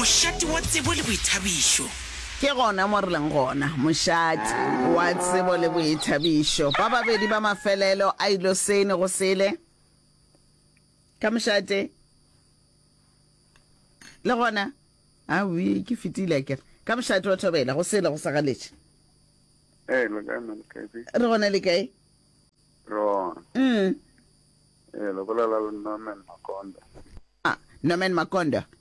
Mošate wa tsebo le boithabišo. Ke gona mo re leng gona. Mošate wa tsebo le boithabišo. Ba babedi ba mafelelo a ilo sene go sele ka mošate. Le gona, a wi, ke fetile a kere. Ka mošate wa thobela go sele go sa galetše. Ee, lo kae mo le kae? Re gona le kae? Rona. Mm. Ee, lo bolela le Norman Makonda. Ah, Norman Makonda.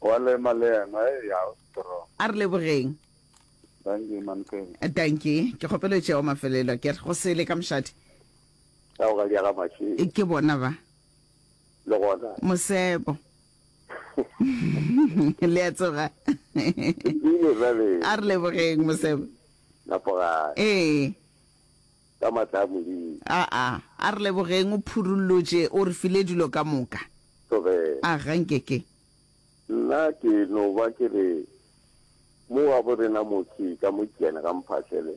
Wa lema le yena, e ya o strong. A re lebogeng. Dankie man King. Dankie, ke kgopela o tšea wa mafelelo ke re go sele ka mošate. Tao ga diaga mašwi. E ke bona ba. Le gona. Mosebo. Le a tsoga. Bile ba be. A re lebogeng Mosebo. Lapoga. Ee. ka matla a Modimo. Aa, a re lebogeng, o phurullotše, o re file dilo ka moka. Thobela. A, ga nke ke. Nna ke no ba ke re, mo wa bo rena motse ka mo Kene ga mphahlele,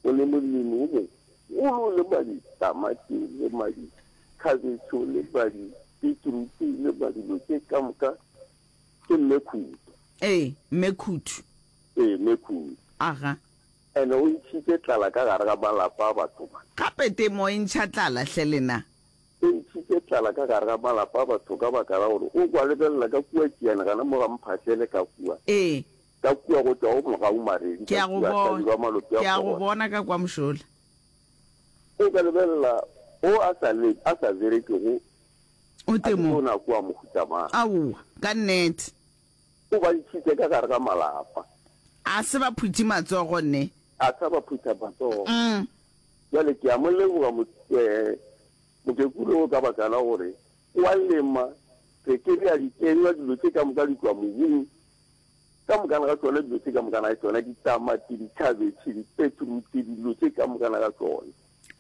o le molemi o mogolo le ba ditamati le ba dikhabetšho le ba dibitruti le ba dilo tše ka moka, ke Mme Khutu. Ee, Mme Khutu. Ee, Mme Khutu. Aga. And o ntšhitše tlala ka gare ga malapa a batho ba. Gape temo e ntšha tlala, hle lena. E ntšhitše tlala ka gare ga malapa a batho ka baka la gore o kwa lebelela ka kua tšeane gana mo ga mphahlele ka kua. Ee. Ka kua go tšwa go mogaumaredi ka kua hlabirwa a malope a kgogwa. Ke a go bona ka kwa mošola. O ka lebelela o a sa le a sa berekego. O temo. A ke tona kua mohuta mang. Aowa, ka nnete. O ba ntšhitše ka gare ga malapa. A se ba phuthe matsogo ne. A sa ba phutha matsogo. Bjale ke a mo leboga mokekulu o ka baka la gore o a lema, re ke re a di kenywa dilo tše ka moka di tšwa mobung. Ka mokana ga tšona dilo tše ka mokana ga tšona, ditamati, ditšhabetšhe, dipetrutse, dilo tše ka mokana ga tšona.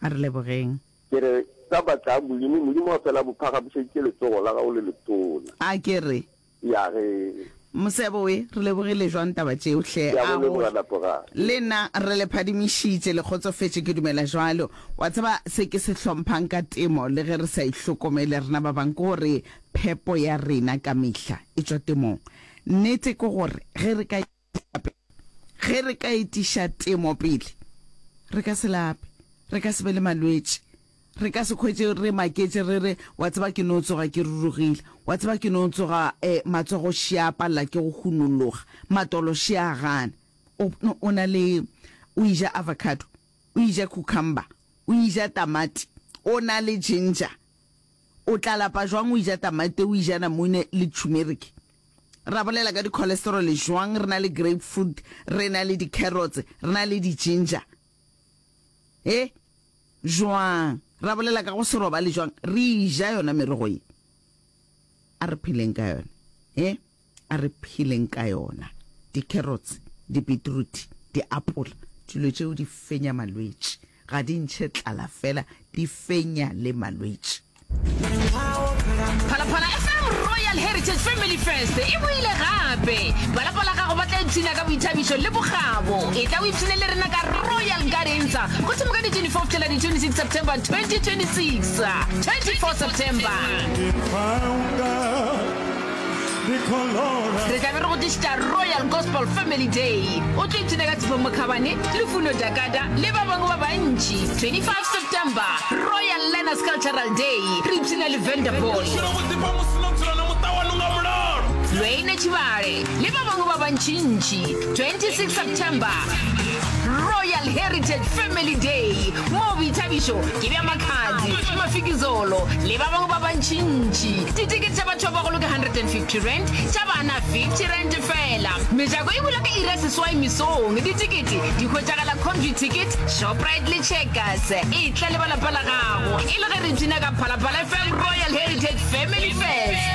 A re lebogeng. Ke re ka baka la Modimo, Modimo wa fela bophaga bušeditše letsogo la gago le letona. A ke re. Ya ge. Mosebo we, re lebogile jwang taba tšeo hle, Ke a go a go leboga re? Lapogang. Le nna re le phadimišitše, le kgotsofetše, ke dumela bjalo. Wa tseba se ke se hlomphang ka temo, le ge re sa e hlokomele rena ba bang, ke gore phepo ya rena ka mehla e tšwa temong. Nnete ke gore ge re ka. lape. Ge re ka etiša temo pele, re ka se lape, re ka se be le malwetši, re ka se hwetše re maketše re re, Wa tseba ke no tsoga ke rurugile, wa tseba ke no tsoga um matsogo še a palela ke go hunologa, matolo še a gana. O, o na le, o eja avocado, o eja cucumber, o eja tamati, o na le ginger. O tla lapa jwang o eja tamati, o eja namune le tšhumeriki? Ra bolela ka di-cholesterol jwang? Re na le grapefruit, re na le di-carrots, re na le di-ginger. E, jwang? Ra bolela ka go se robale jwang? Re ja yona merogo ye. A re pheleng ka yona. E, a re pheleng ka yona. Di-carrots, di-beetroot, di-apole, dilo tšeo di fenya malwetši. Ga di ntšhe tlala fela, di fenya le malwetši. Phalaphala FM Royal Heritage Family Fest e boile gape. Ba lapa la gago ba tla ipshina ka boithabišo le bokgabo. E tla o ipshine le rena ka Royal Gardens go thoma ka di 24 fihlela di 26 September 2026. 24 September. re tlabe re go tlišitša royal gospel family day o tlo ipshina ka tshifo mokhabane lefuno dakada le ba bangwe ba bantši 25 september royal learners cultural day re ipshina le vanderball lweine tšhibale le ba bangwe ba bantšintši 26 september royal heritage family day moo boithabišo ke bja makhadzi mafikizolo le ba bangwe ba bantšintši Titikete tša batho ba bagolo ke 150 rand, tša bana 50 rand fela. Mejako e bula ka iri ya seswai mesong. Ditikete di hwetšagala Comview Ticket, Shoprite le Checkers. E tla le ba lapa la gago e le ge re ipshina ka Phalaphala FM Royal Heritage Family Fest.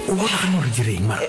O bona gana gore direng mara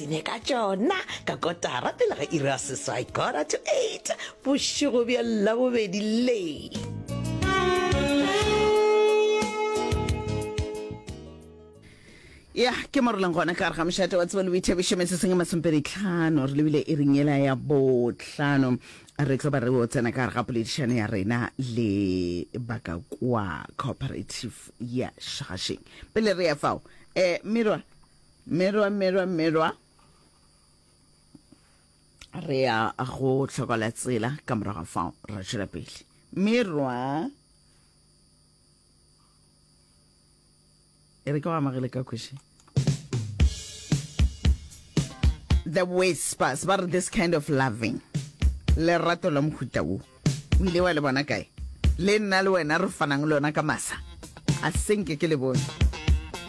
Ine ka tšona ka kotara pele ga iri ya seswai, quarter to eight, bošego bja Labobedi le. ya ke mo re leng gona ka gare ga mošate wa tsebo le boithabišo meseseng e masompeditlhano re lebile e reng ela ya botlhano re tlo ba re o tsena ka gare ga poledišano ya rena le baka kwa cooperative ya shagasheng pele re ya fao um merwa Mmelwa, mmelwa, mmelwa. Re ya go hlokola tsela ka morago fao ra tšwela pele. Mmelwa. E re ke go amagele ka kweše. the whispers ba re this kind of loving lerato la mohuta wo o ile wa le bona kae le nna le wena re fanang le yona ka masa a senke ke le bone